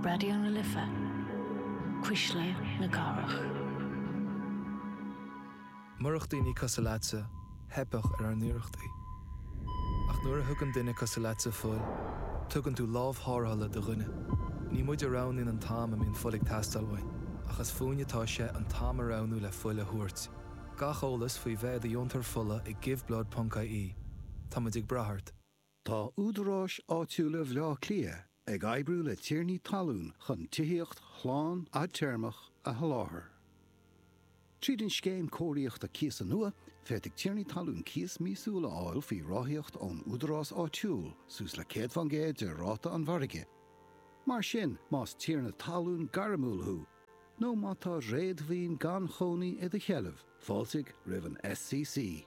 Raidió na Life, Cuisle na Cathrach. Murach daoine cosúil leatsa, theipfeadh ar ár n-iarrachtaí. Ach nuair a thugann duine cosúil leatsa fuil, tugann tú lámh thárrthala do dhuine. Ní muid a roghnaíonn an t-am a mbíonn fuil ag teastáil uainn, ach is fúinn atá sé an t-am a roghnú le fuil a thabhairt. Gach eolas faoi bheith i do dheontóir fola ag Give Blood ponc IE. Tá muid ag brath ort. Tá údaráis áitiúla Bhaile Átha Cliath ag oibriú le tiarnaí talún chun tithíocht shlán fhadtéarmach a sholáthar. Tríd an Scéim Cóiríochta Cíosa nua, féadfaidh tiarnaí talún cíos míosúil a fháil faoi ráthaíocht ón údarás áitiúil suas le 100 faoin gcéad de ráta an mhargaidh. Mar sin, más tiarna talún gairmiúil thú nó má tá réadmhaoin gan chónaí i do sheilbh, fáiltigh roimh an SCC.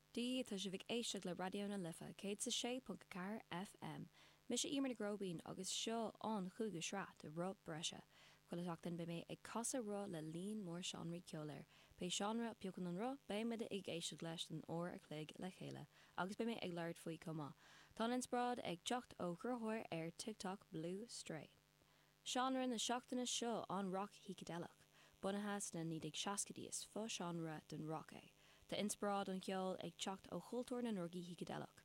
D, Tá sibh ag éisteacht le Raidió na Life 106.4 FM. Mise Emer Nic Róibín agus seo an cúigiú sraith de Roth Breise. Chuile sheachtain beidh mé ag casadh roth le líon mór seánraí ceoil air. Pé seánra a phiocann an roth beidh muid ag éisteacht leis don uair a chloig le chéile agus beidh mé ag labhairt faoi chomh maith. Tá an inspioráid ag teacht ó chruthaitheoir ar TikTok, Blue Stray. seánra na seachtaine seo an rac shícideileach. Bunaithe sna 1960idí is fo-seánra don rac é, tá inspioráid an cheoil ag teacht ó chultúr na ndrugaí shícideileach.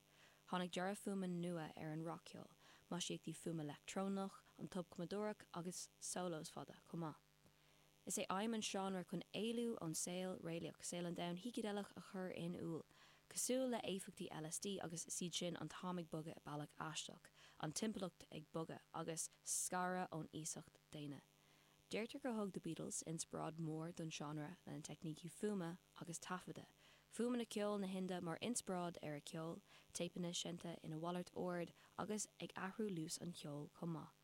Tháinig dearadh fuaime nua ar an rac-cheol, maisíochtaí fuaime leictreonach, an tobchumadóireacht agus solos fada chomh maith. Is é aidhm an seánra chun éalú ón saol réalaíoch, saol an domhain shícideileach a chur in iúl, cosúil le éifeachtaí LSD agus is iad sin, an t-am ag bogadh i mbealach aisteach, an timpeallacht ag bogadh, agus scaradh ón iasacht daonna. Deirtear gur thug The Beatles inspioráid mhór don seánra lena teicnící fuaime agus taifeadadh, fuaimeanna ceoil na hInde mar inspioráid ar a cheol, téipeanna seinnte ina mhalairt ord agus ag athrú luas an cheoil chomh maith.